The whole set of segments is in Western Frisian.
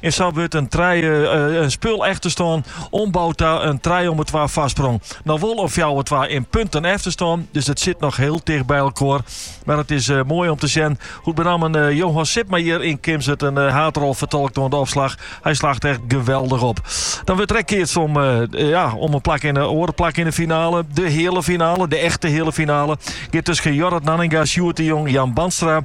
En sa wurdt in trije in spul efterstân omboud ta in trije om 'e twa foarsprong. No wol in fjouwer twa yn punten efterstân, dus it sit noch hiel ticht by elkoar. Mar it is moai om te sjen hoe't benammen Johan Sipma hjir yn Kimswert in haadrol fertolkt oan de opslach. Hy slacht echt geweldich op. Dan wurdt der ek keatst om in plak yn 'e oare plak yn 'e finale. De heale finale, de echte heale finale, giet tusken Jorrit Nanninga, Sjoerd de Jong, Jan Bandstra.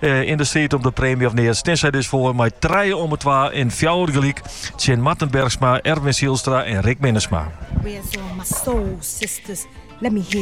Eh, yn de striid om de preemje of mear steane sy dus foar mei trije om 'e twa en fjouwer gelyk. Tsjin Marten Bergsma, Erwin Zijlstra en Rick Minnesma.